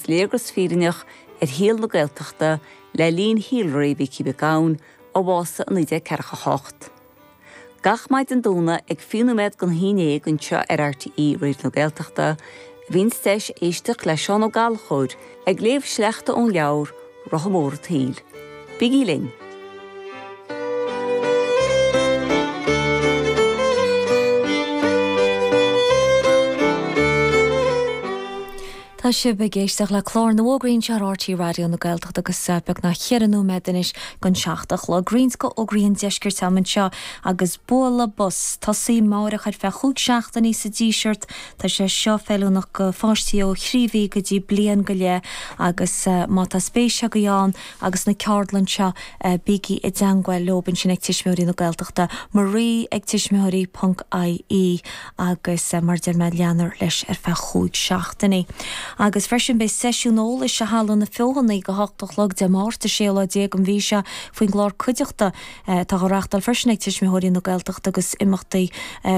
Léargas fírinneach ar shaol na Gaeltachta le linn shaolré Mhicí Mhic Gabhann, a bhásaigh i 1948. Gach maidin Domhnaigh ag fiche nóiméad gon haon déag anseo ar RTÉ Raidió na Gaeltachta, bhíonn deis éisteacht le Seán Ó Gallchóir ag léamh sleachta ón leabhar Rotha Mór an tSaoil. Bigí linn! Tá sibh ag éisteach le clár na bhFógraí seo ar RTÉ Raidió na Gaeltachta agus eh, beag nach cheithre nóiméad anois gon seacht a chlog. D'imeoinn go fhógraí an deiscirt am anseo agus Bualadh Bos ag tosaí amáireach ar feadh chúig seachtainí sa Díseart Tá sé seo feiliúnach go pháistí ó thrí mhí go dtí bliain go leith agus má tá spéis agaibh ann agus sna ceardlanna seo bígí i dteangmháil leob ansin ag Tuismitheoirí na Gaeltachta, Marie ag tuismitheoirí ponc IE agus mar a deir mé leanfar leis ar feadh chúig seachtainí. Agus freisin beidh seisiún eolais i Halla na Feothanaí ag a hocht a chlog Dé Máirt 16 lá den mhí seo faoin gclár Cuideachta, Tá dhá reáchtáil freisin ag Tuismitheoirí na Gaeltachta agus imeachtaí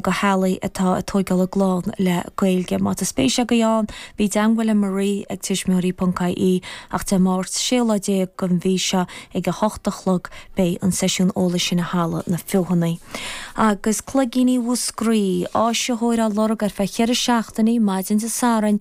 go theaghlaigh atá ag tóigeáil a gclann le Gaeilge. Má tá spéis agaibh ann, bí i dteangmháil le Marie ag tuismitheoirí.ie ach Dé Máirt, 16 lá den mhí seo ag 8 a chlog beidh an seisiún eolais sin i Halla na Feothanaí. Agus Cloigíní Mhúscraí, áisitheoir á lorg ar feadh cheithre seachtainí, maidin Dé Sathairn,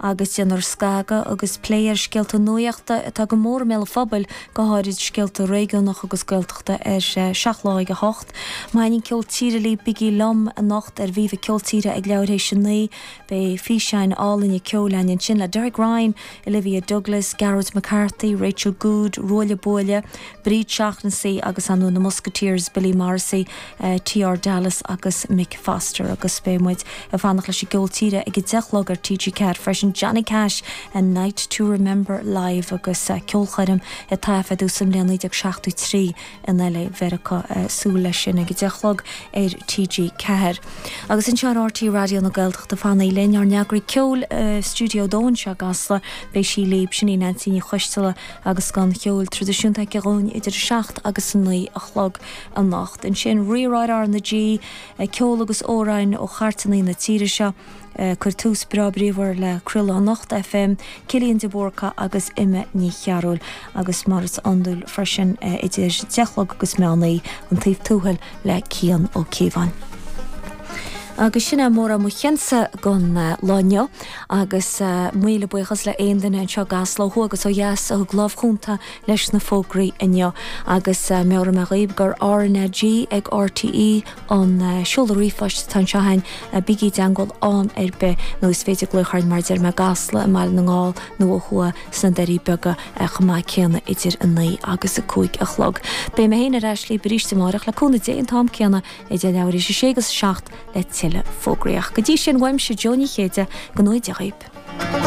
agus déanfar scagadh agus plé ar scéalta nuachta atá go mór i mbéal an phobail, go háirid scéalta réigiúnacha agus Gaeltachta, ar Seacht Lá ag a hocht. Má thaitnionn ceol tíre libh, bigí liom anocht ar Viva Ceol Tíre ag leathuair théis a naoi. Beidh físeáin álainne ceoil ann ansin le Derek Ryan, Olivia Douglas, Gearóid McCarthy, Rachel Goode, Ruaille Buaille, Bríd Shaughnessy agus ansin na Musketeers, Billy Morrissey, TR Dallas agus Mick Foster agus beidh muid ag fanacht leis an gceol tíre ag a deich a chlog ar TG4 freisin, Johnny Cash, A Night to Remember Live agus ceolchoirm a taifeadadh sa mbliain 1973 in LA i Meiriceá, súil leis sin ag a deich a chlog ar TG4. Agus anseo ar RTÉ Raidió na Gaeltachta fanaigh linn, ár n-eagraí ceoil i Stiúideo 2 anseo i gCasla beidh sí libh, sin í Neansaí Ní Choisdealbha, Agus scoth an cheoil traidisiúnta aici dhúinn idir a seacht agus a naoi a chlog anocht. Ansin Rí-Rá ar R na G, ceol agus amhráin ó chairteanna na tíre seo. ag cur tús breá bríomhar le craoladh Anocht FM, Cillian de Búrca agus Emma Ní Chearúil. Agus mar is iondúil freisin idir deich a chlog agus meán oíche, An Taobh Tuathail le Cian Ó Cíobháin. Agus sin é mórán mo chionsa don lá inniu. Agus míle buíochas le aon duine anseo i gCasla, ó thuaidh agus ó dheas a thug lámh chúnta leis na fógraí inniu. Agus meabhraím daoibh gur RnaG ag RTÉ an seoladh ríomhphoist atá anseo againn. Bígí i dteangmháil am ar bith, nó is féidir glaoch orainn, mar a deir mé, i gCasla, i mBaile na nGall, nó ó thuaidh sna Doirí Beaga chomh maith céanna idir 9 agus 5 a chlog. Beidh mé féin ar ais libh arís amárach, le cúnamh Dé, an t-am céanna idir leathuair tar éis a sé agus a seacht. le tuilleadh fógraí. Go dtí sin, uaimse, Jo Ní Chéide, go n-éirí go geal libh.